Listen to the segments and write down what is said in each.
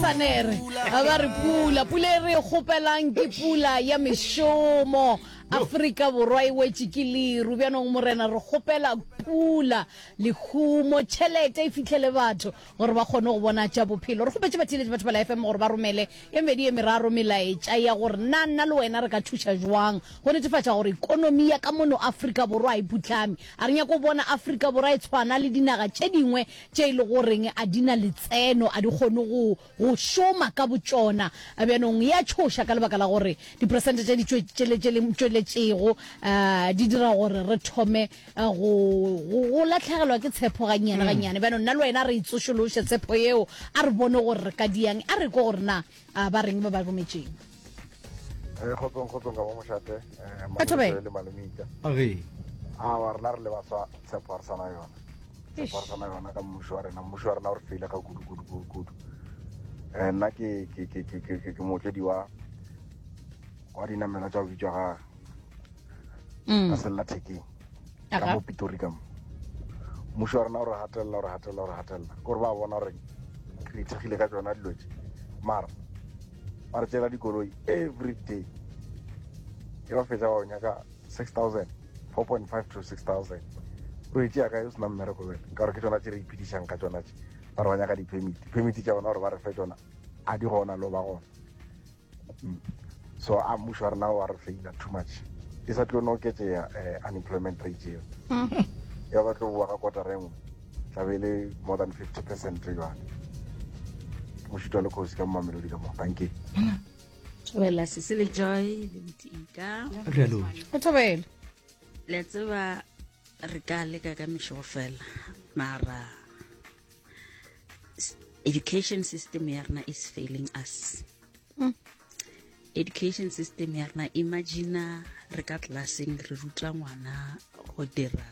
sanere a ba re pula pula e re e kgopelang ke pula ya mešomo afrika borwa e wetše ke leru bjanong morena re kgopela pula lehumo tšhelete e fitlhele batho gore ba kgone go bona tša bophelo re kgopetse batheletše batho ba la fm gore ba romele e medi e meraro melaetša ya gore nna nna le wena re ka thuša jwang go netefatša gore ekonomi ya ka mono afrika borwa e putlame a re nyako bona afrika borwa e tshwana le dinaga tše dingwe tše e le goreng a di na letseno, a di kgone go go šoma ka botšona. Bjanong e a tšhoša ka lebaka la gore diperesente tša ditšo tše le tše le tšweletšego um di dira gore re thome eh, go go- go latlhegelwa ke tshepo gannyane gannyane. Bjanong nna le wena re e tsošološe tshepo yeo, a re bone gore re ka diang, a re kwe gore na a ba reng ba ba rometšeng eh, kgotsong kgotsong ka mo mošate eh, le malomita awa rena re le baswa tshepo re sana yona tshepo re sana yona ka mmušo wa rena mmušo wa rena o re feile ga kudukudukudukudu um eh, nna ke mootledi wa wa dinamela tsa go bitswa ga mm. ka sellathekeng ka mo pitori ka mo mmušo wa rena o re gatelela o re gatelela o re gatelela ke gore ba bona gore re ithekgile ka tsona dilo tse mara ba re tsela dikoloi every day e ba fetsa ba nyaka six thousand four point five to six thousand o etse yaka e o sena mmereko bele ka gore ke tsona tse re iphedišang ka tsona tse ba re ba nyaka di-permit di-permit tša bona gore ba re fe tsona a di gona lo ba gona Mm. so a mmušo wa rena wa re feila too much e sa tlo no oketsea um eh, unemployment rate eo ya ba tlo boa ka kotara e nngwe tlabe e le more than fifty percent jale ke mošito le kgosi ka mmamelodi ka moo tanke wela sese le joy le botika o thobele le tseba re ka leka ka mešogo fela mara education system ya rena is failing us mm. education system ya rena imagina re ka classeng re ruta ngwana go dira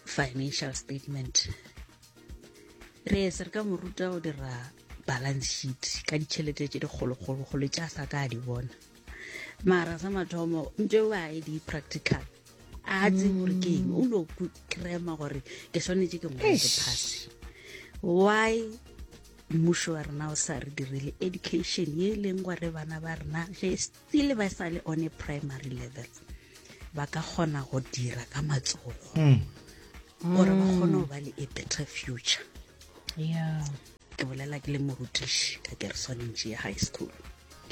financial statement re ese re ka mo ruta go dira balance sheet ka ditšhelete tse dikgolokgolo go le tša sa ka a di bona mara sa mathomo ntse o a e di-practical a tse gore ke eng o no krema gore ke swanetse ke ngwale ke phase why mmušo wa rena o sa re direle education ye e leng gore bana ba rena ge still ba sa le one primary level ba ka kgona go dira ka matsogo hmm. gore ba kgone go ba le a better future yeah. Ke bolela ke le morutiši ka kereswanentši ya high school.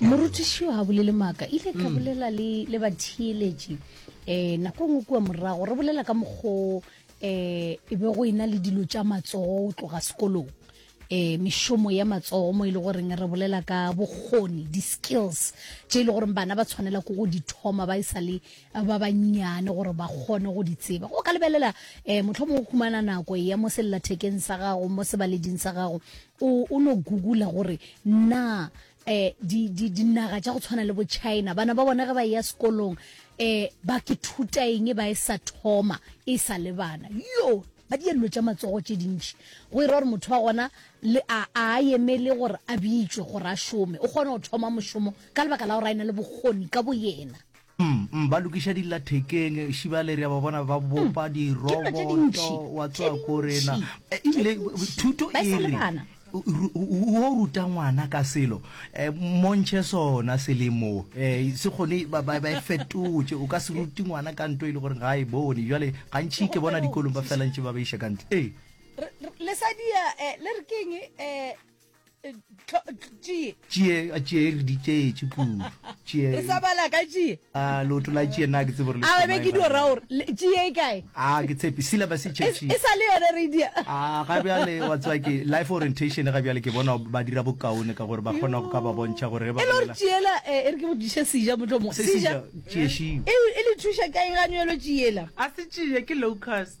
Morutiši yo ha bolele maaka ile ka mm. bolela le le batheeletši eh nako ngwe kua morago re bolela ka mokgo eh e be go ena le dilo tša matsogo go tloga sekolong eh mešomo ya matsogo mo ile e goreng re bolela ka bokgoni di skills tše ile e goreng bana ba tshwanela go go di thoma ba e sa le ba bannyane gore ba kgone go di tseba go ka lebelela um motlho mongwe khumana nako ya mo sellathekeng sa gago mo sebaleding sa gago o no googula gore na um dinaga tša go tshwana le bo china bana ba bone ge ba ya sekolong um ba ke thuta eng e ba e sa thoma e sa le bana yo ba di dilo tša matsogo tše dintši go e ra gore motho wa gona le a a emele gore a bitšwe gore a šome o kgone go thoma mošomo ka lebaka la gore a e na le bokgoni ka boyena Umm ba lokiša dilla thekeng šibale re a ba bona ba bopa mm. diroboto wa tsoa ko rena e, ebile thuto e re o ruta ngwana ka selo e, montšhe sona selemo e, se kgone ba e fetotše o ka se rute ngwana ka nto e le gore ga e bone jale gantšhi ke bona dikolong ba felantše ba ba iša ka ntle ee le sadia le re keng um tšie tšie a tšie e re di tšeetše kudu tšie re sa bala ka tšie a loto la tšie na ke tsebo re le a be ke di ora gore tšie e kae a ke tshepe sila ba se tšetše e sa le yone re di a ga bja le wa tswa ke life orientation ga bja le ke bona ba dira bokaone ka gore ba kgona go ka ba bontšha gore ba e lor tšiela e re ke botšiše sija motho mo sija tšie shi e le thuša kae ga nyelo tšiela a se tšie ke locust